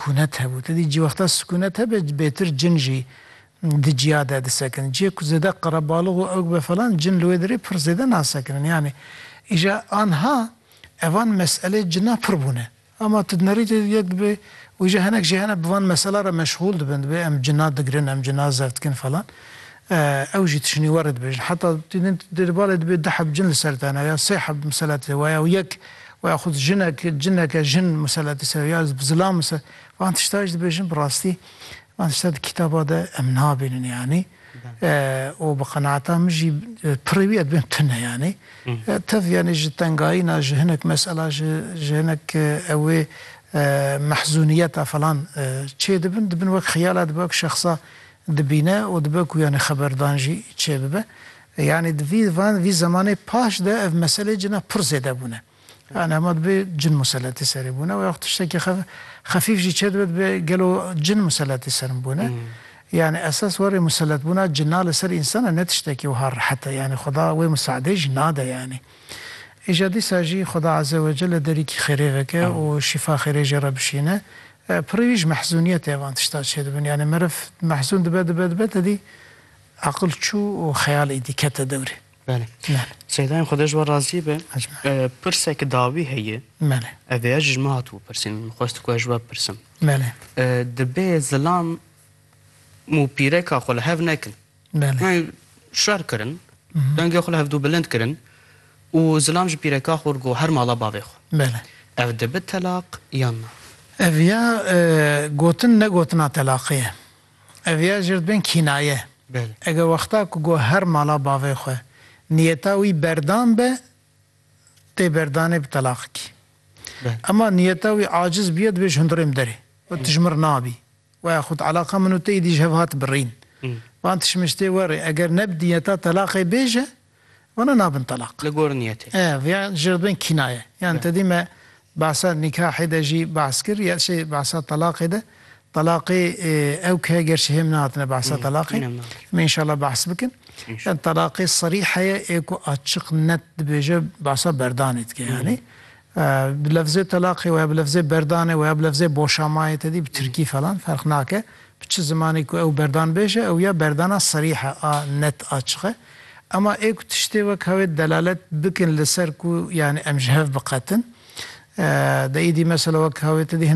Kûnet hebû. Te dî cîwexta sikûnet hebe bêtir cin jî di cîya de disekin. Cîyê ku zêde qerebalix û ewg be falan cin li wê derê pir zêde nasekinin. Yanî îja anha evan meselê cina pir bûne. Ama tu di nerîtê de yek dibê û îja hinek jî hene bi van mesela re meşxûl dibin. Dibê em cina digirin, em cina zevt dikin falan. Ew jî tişinî we re dibêjin. Heta tu din di di balê dibê du heb cin li ser te ne ya sê heb miselet lê we ya û yek we ya xwed jinek cineke jin miseletî ser ya zilam mise van tişta jî dibêjin bi rastî van tişta di kîtaba de em nabînin yanî û bi qenaeta min jî pirrê wî ya dibên tune yanî tev yanî ji tengayîna ji hinek mesela ji ji hinek ewê mehzûniyeta falan çê dibin dibin wek xiyala dibe wek şexsa Dibîne û dibe ku yanî xeberdan jî çêbibe. Yanî di vî van vî zemanê paş de ev meselê cina pir zêde bûne. Yanî hema dibe cin museletî serê bûne û ya xwe tiştekî xef xefîf jî çêdibe dibe gelo cin museletî ser min bûne. Yanî esas warê museletbûna cina li ser însan e ne tiştekî wiha rehet e. Yanî Xweda wê misaadeyê jî nade yanî. Îja dîsa jî Xweda Azze Wecelle derîkî xêrê veke û şîfa xêrê jê re bişîne. Pirî ji mehzûniyetê van tişta çêdibin. Yanî meriv mehzûn dibe dibe dibe tedî aqil çû û xeyal êdî kete dewrê. Belê. Belê. Seyda em xwedê ji we razî be. Pirsek dawî heye. Belê. Ev êya jî ji min hatibû pirsîn. Min xwest ku ez ji we bipirsim. Belê. Dibe zilam mûpîreka xwe li hev nekin. Belê. Şer kirin, dengê xwe li hevdu bilind kirin û zilam ji pîreka xwe got her mala bavê xwe. Belê. Ev dibe telaq yan na? Ev ya gotin ne gotina telaqê ye. Ev ya jê re dibên kînaye. Belê. Eger wexta ku got her mala bavê xwe, niyeta wî berdan be, tê berdanê bi telaqikî. Belê. Ema niyeta wî aciz bûye dibê ji hundirê min derê. Wê tijmir nabî. Waya xut eleqa min û te îdî ji hev hat birîn. Van tişmiştê werê eger ne bi diyeta telaqê bêje, wana nabin telaq. Li gor niyetê. E, vya jê re dibin kînaye. Yan te dî me behsa nîkahê de jî behs kir, ya şê behsa telaqê de. Telaqê ew ke gerçî hêm nehatine behsa telaqê. Hîn em nehat. Em ê înşallah behs bikin. Yan telaqê serî heye ê ku açiq net dibêje behsa berdanê dike yanî. Bi lefzê telaqê û ya bi lefzê berdanê û ya bi lefzê boşamayê tedî bi tirkî falan ferq nake. Bi çi zimanê ku ew berdan bêje ew ya berdana serîh e a net a çix e. Ema ê ku tiştê weka wê delalet bikin li ser ku yanî em ji hev biqetin. De îdî mesela weka wê tedî hin.